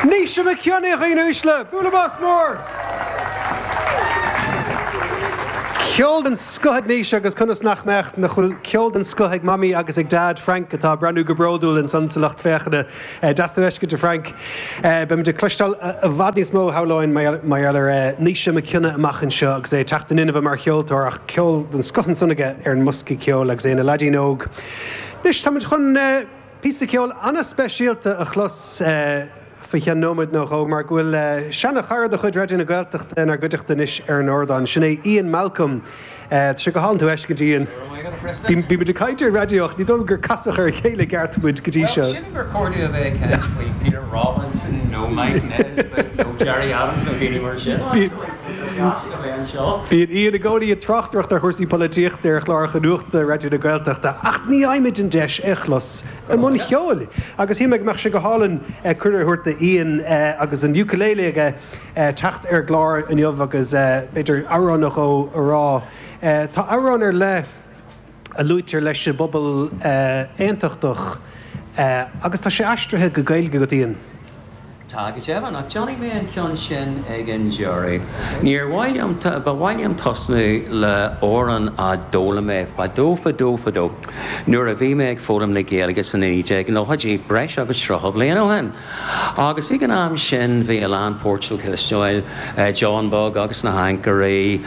Naoise Mac Cionnaith, a dhaoine uaisle, bualadh bos mór! Ceol den scoth ag Naoise agus conas nach mbeadh nach bhfuil ceol den scoth ag Mamaí agus ag Dad, Frank, atá ag breathnú go bródúil ansan sa lucht féachana. Deas tú a fheiscint, a Frank. Beimid ag cloisteáil i bhfad níos mó, shamhlóinn, mar gheall ar Naoise Mac Cionnaith amach anseo agus é ag teacht in inmhe mar cheoltóir, ach ceol den scoth ansan aige ar an mbosca ceoil agus é ina leaidín óg. Anois, táimid chun píosa ceoil ana-speisialta a chlos faoi cheann nóiméad nó dhó, mar go bhfuil seana-chara de chuid Raidió na Gaeltachta inár gcuideachta anois ar an ardán. Sin é Ian Malcolm. Tá sé go hálainn tú a fheiscint, Ian. Bímid ag caint ar raidió ach ní dóigh liom gur casadh ar a chéile i gceart muid go dtí seo. Bhuel, sílim gur cordial a bheith ag caint faoi Peter Robinson nó Mike Nesbitt nó Gerry Adams nó daoine mar sin. Ach is aisteach a bheith anseo. Bíonn Ian i gcónaí ag tráchtaireacht ar chúrsaí polaitíochta ar chláracha nuachta Raidió na Gaeltachta ach ní fhaighimid an deis é a chlos i mbun cheoil agus shíl mé go mbeadh sé go hálainn cuireadh a thabhairt do Ian agus an ukulele aige teacht ar an gclár inniu agus b'fhéidir amhrán nó dhó a rá. Tá amhrán ar leith a luaitear leis an bpobal aontachtach agus tá sé aistrithe go Gaeilge agat, Ian. Tá, go deimhin, ach déanfaidh mé an ceann sin ag an deireadh. Níor mhaith liom, ba mhaith liom tosnú le amhrán a d'fhoghlaim mé fadó fadó fadó nuair a bhí mé ag foghlaim na Gaeilge sna 1990idí, breis agus 30 bliain ó shin. Agus ag an am sin bhí a lán popcheoil le cloisteáil, John Beag agus na hAncairí,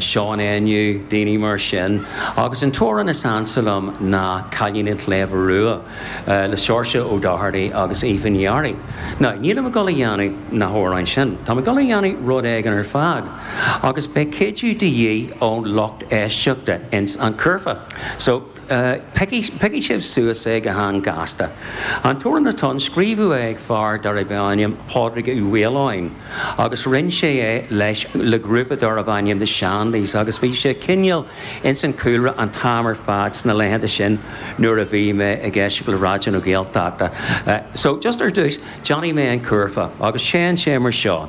Seán Éinniú, daoine mar sin. Agus an t-amhrán is ansa liom ná Cailín an tSléibhe Rua le Seoirse Ó Dochartaigh agus Aoife Ní Fhearraigh. Now, nílim ag dul a dhéanamh na hamhráin sin, táim ag dul a dhéanamh rud éigin ar fad agus beidh cuidiú de dhíth ón lucht éisteachta ins an curfá. So. Piocfaidh sibh suas é go han-ghasta. An t-amhrán atá ann, scríobhadh é ag fear darbh ainm Pádraig Ó hAoláin agus roinn sé é leis le grúpa darbh ainm The Shandies agus bhí sé cineál ins an cúlra an t-am ar fad sna laethanta sin nuair a bhí mé ag éisteacht le Raidió na Gaeltachta. So just ar dtús, déanfaidh mé an curfá agus théann sé mar seo.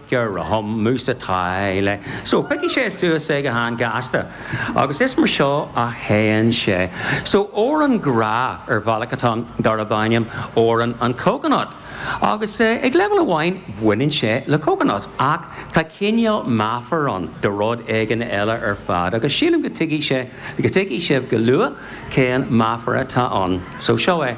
gur romham mus atá le so piocfaidh sibh suas é go han-ghasta agus is mar seo a théann sé so amhrán grá ar bhealach atá ann darb ainm Amhrán an Coconut agus ag leibhéal amháin baineann sé le coconut ach tá cineál meafar ann do rud éigin eile ar fad agus sílim go dtuigfidh sé go dtuigfidh sibh go luath cén meafar atá ann so seo é.